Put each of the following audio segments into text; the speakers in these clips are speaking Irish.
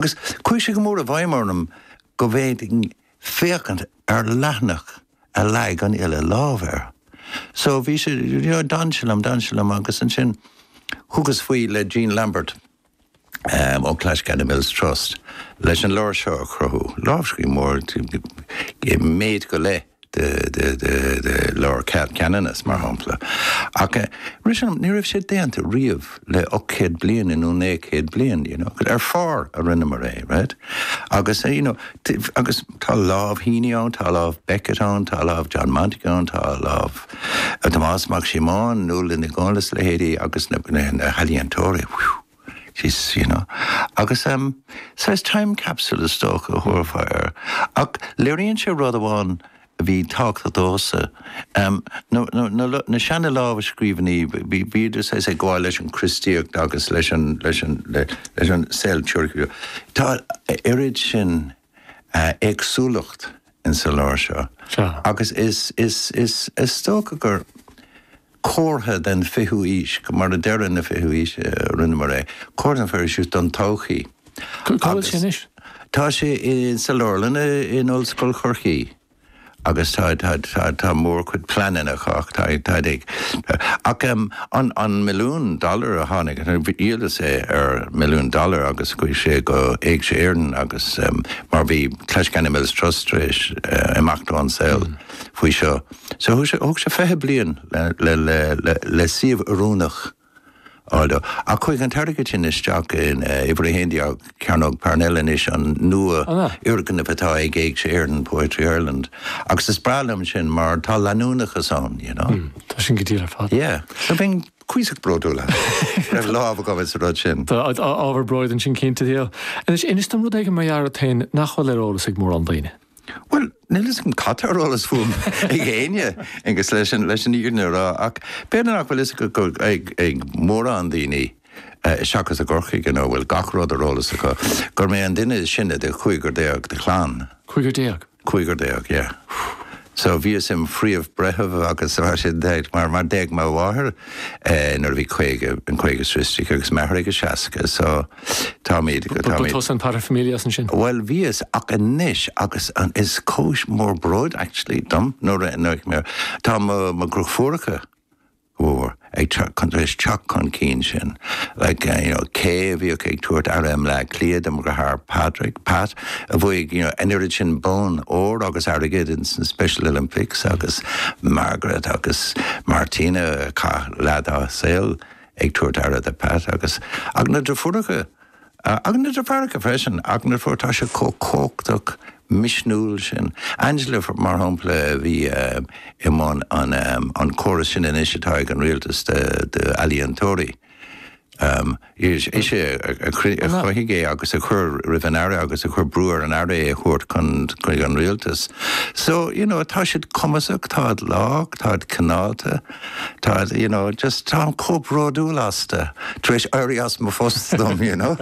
agus chuaigh sé go mór i bhfeidhm orm go bhféadfainn féachaint ar leathanach a leag an uile lámh air. So bhí sé, you know, d'fhan sé liom, d'fhan sé liom agus ansin thugas faoi le Gene Lambert ó Clashganna Mills Trust leis an leabhar seo a chruthú, lámhscríbhinn mór, méid go leith. de Leabhar Ceanannais, mar shampla. Ach, rith sé liom, ní raibh sé déanta riamh le ocht gcéad bliain i nó naoi céad bliain, you know. Ar phár a rinneamar é, right? Agus, you know, agus tá lámh Heaney ann, tá lámh Beckett ann, tá lámh John Montague ann, tá lámh Tomás Mac Síomóin, Nuala Ní Dhomhnaill is a leithéidí agus na healaíontóirí, whew. Is, you know. Agus em, saghas time capsule is dócha a thabharfá air. Ach léiríonn sé rud amháin a bhí tábhachtach domhsa, em, na, na, na, na seana-lámhscríbhinní, bhí, bhíodar saghas ag gabháil leis an Chríostaíocht agus leis an, leis an, leis an saol tionsclaíoch. Tá a oiread sin. éagsúlacht in sa leabhar seo agus is is is is dócha gur comhartha den 20ú aois go mar ag deireadh na 20ú aois a rinneamar é comhartha an 20ú aois don todhchaí agus tá sé in sa leabharlann in Ollscoil Chorcaí. agus tá mórchuid pleananna chách taid ag ach an milliún dollar a tháinig dhíolas é ar milliún dollar agus chuaigh sé go Éigse Éireann agus mar bhí Clashganna Mills Trust tar éis imeacht ón saol faoi seo so thóg sé 20 bliain le suíomh oiriúnach Ach chuaigh an t-airgead sin isteach in uimhir a haon déag Cearnóg Parnell anois, an nua-fhoirgneamh atá ag Éigse Éireann, Poetry Ireland, agus is breá liom sin mar tá leanúnachas ann, you know. Tá sin go diail ar fad. Yeah. So bheinn cuíosach bródúil as. Go raibh lámh agam ins an rud sin. Tá ábhar bróid ansin cinnte. Anois, inis dom rud éigin mar gheall ort féin nach bhfuil ar eolas ag mórán daoine. Bhuel, níl 'fhios a'm cad tá ar eolas fúm ag éinne agus leis an, leis an fhírinne a rá ach b'fhéidir nach bhfuil 'fhios ag, ag, ag mórán daoine, seachas i gCorcaigh, you know, a bhfuil gach rud ar eolas acu, gur mé an duine is sine de chúigear déag de chlann. Cúigear déag? Cúigear déag, yeah. So bhíos im' phríomh breitheamh agus mar sin de mar, mar d'éag mo mháthair nuair a bhí caoga, an caoga 's a trí aici agus m'athair ag a seasca so, Táimid, go táimid. Tusa an paterfamilias ansin. Bhuel, bhíos, ach anois, agus an, is cúis mór bróid actually dom nuair a, nuair a, tá mo, mo dheirfiúracha go mór ag teacht chun, tar éis teacht chun cinn sin, like, you know, Kay a bhíodh ag tabhairt aire i mBleá Cliath do mo dheartháir Pádraic, Pat, a bhuaigh, you know, an oiread sin bonn óir agus airgid in san Special Olympics agus Margaret agus Martina a chaith leath dá saol ag tabhairt aire do Pat agus na deirfiúracha agus na deartháireacha freisin ach na mná, tá siad chomh cumhachtach misniúil sin. Angela mar shampla a bhí i mbun an chórais sin anois atá ag an rialtas d'ealaíontóirí, ise a chruthaigh é agus a chuir roimh an Aire agus a chuir brú ar an Aire é a thabhairt chuig an rialtas. So, you know, tá siad cumasach, táid lách, táid cineálta. Tá, you know, just táim chomh bródúil astu, tar éis éirí as mo phost dom, you know.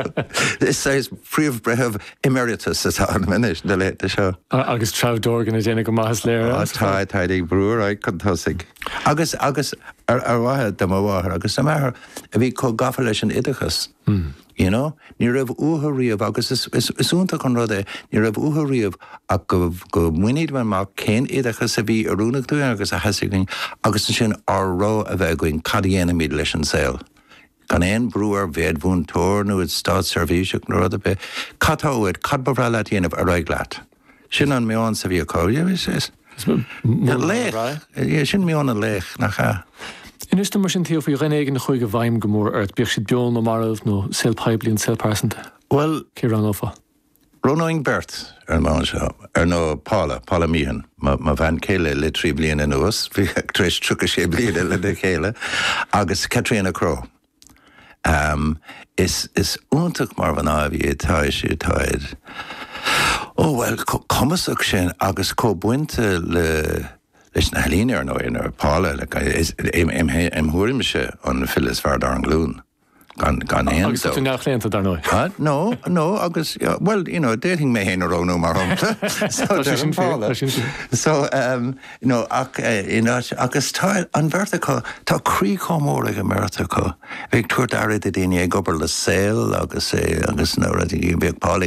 Is é is Príomh-Bhreitheamh Emeritus atá ionam anois na laethanta seo. Agus Treabh Dorgan ag déanamh go maith is léir. Á tá, táid ag brú ar aghaidh chun tosaigh. Agus, agus a mhaithe do mo mháthair agus do m'athair a bhí chomh gafa leis an oideachas. You know? Ní raibh uathu riamh, agus is iontach an rud é, ní raibh uathu riamh ach go mbainfimis amach cibé oideachas a bhí oiriúnach dúinn agus a theastaigh uainn, agus ansin ár rogha a bheith againn cad a dhéanaimid leis an saol. Gan aon brú a bheith id mhúinteoir nó id státseirbhíseach nó rud ar bith, cad tá uait, cad ba bhreá leat a dhéanamh ar aghaidh leat? Sin an meon a bhí acu. Laoch. Sin meon an laoich, nach ea? Inis dom mar sin, Theo, faoi dhuine éigin a chuaigh i bhfeidhm go mór ort, bíodh siad beo nó marbh, ón saol poiblí nó saol pearsanta. Bhuel. Cé roghnófá? Roghnóinn beirt ar an mbonn seo. Ar ndóigh, Paula, Paula Meehan, mo bhean céile le trí bliana anuas, bhí tar éis 36 bliana lena chéile, agus Catriona Crowe. Am, Is is iontach mar mhná a bhí Ó bhuel, chomh cumasach sin agus chomh bainte le leis na healaíona, ar ndóigh, Paula, is im thuairimse an file is fearr dár nglún, gan gan aon dabht. Agus tá tú neamhchlaonta, dar ndóigh. Ha? No, no agus bhuel, you know d'fhéadfainn mé féin a roghnú mar shampla. So deirim Paula. Tá sé sin fíor, tá sin fíor. So, em. nó ach in áit, agus tá an bheirt acu, tá croí chomh mór ag an mbeirt acu, bheith ag tabhairt aire do dhaoine, ag obair le saol agus, agus na rudaí, bhíodh Paula.